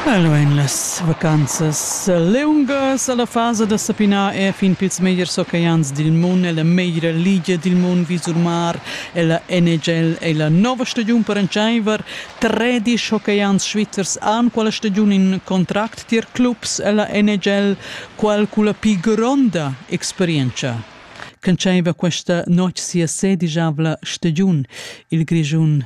Bello ein las vacanzas liungas alla fasa da sapinar e fin pils megliers oceans dil mund ella meglra ligia dil mund visur mar ella NHL ei la nova stagiun per entscheiver tredisch oceans svizzers han quella stagiun in contract tier clubs ella NHL qual culla pli gronda experienza Ch'entscheiva questa notg sia sedisavla stagiun. Il Grischun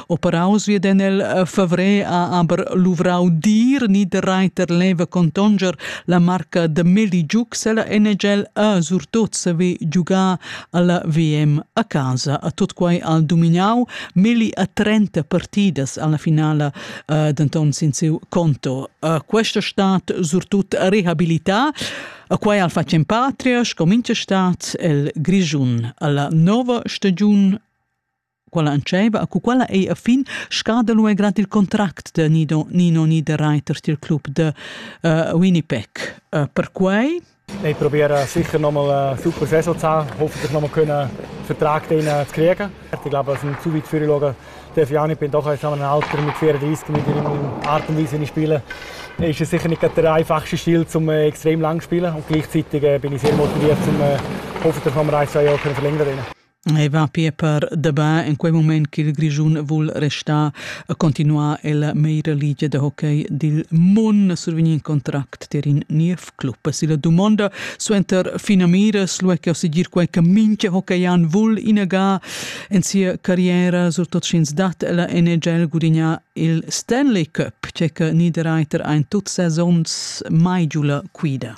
Operaus viedan el eh, favrer a aber luvrau dir ni de Reiter leva contonger la marca de Meligiuc se la NHL a surtot se ve giugar alla VM a casa. A tot quai al dominau Meli a 30 partidas alla finala eh, denton sin siu conto. Eh, questa stat surtut rehabilità a quai al facen patria, sco mincha stat, el Grischun, alla nova stagiun Quella entscheiva a cu quella ei a fin scada lu grad il contract de Nido Nino Niederreiter til club de uh, Winnipeg. Uh, perquei Nee, ik probeer uh, zeker nog mal uh, super zes te Hoffen dat we nog kunnen vertrag tegen te krijgen. Ik glaube, als een zu weit vorgelegen darf ich auch nicht. Ich bin doch jetzt ein Alter mit 34, mit in Art und Weise nicht spielen. Ist es sicher nicht der einfachste Stil, um äh, extrem lang zu spielen. Und gleichzeitig äh, bin ich sehr motiviert, um äh, hoffen, dass wir ein, zwei Jahre verlängern können. E va pia per dabin in quei mument ch'il Grischun vul restar e continuar ella meira ligia da hockey dil mun survegni in contract tier in niev club. Silla dumonda suenter finamiras lu che segir quei che mincha hockeyan vul inaga en sia carriera, surtot sch'ins dat ella NHL gudignar il Stanley Cup, che che Niederreiter ein tut sezons mai giu la quida.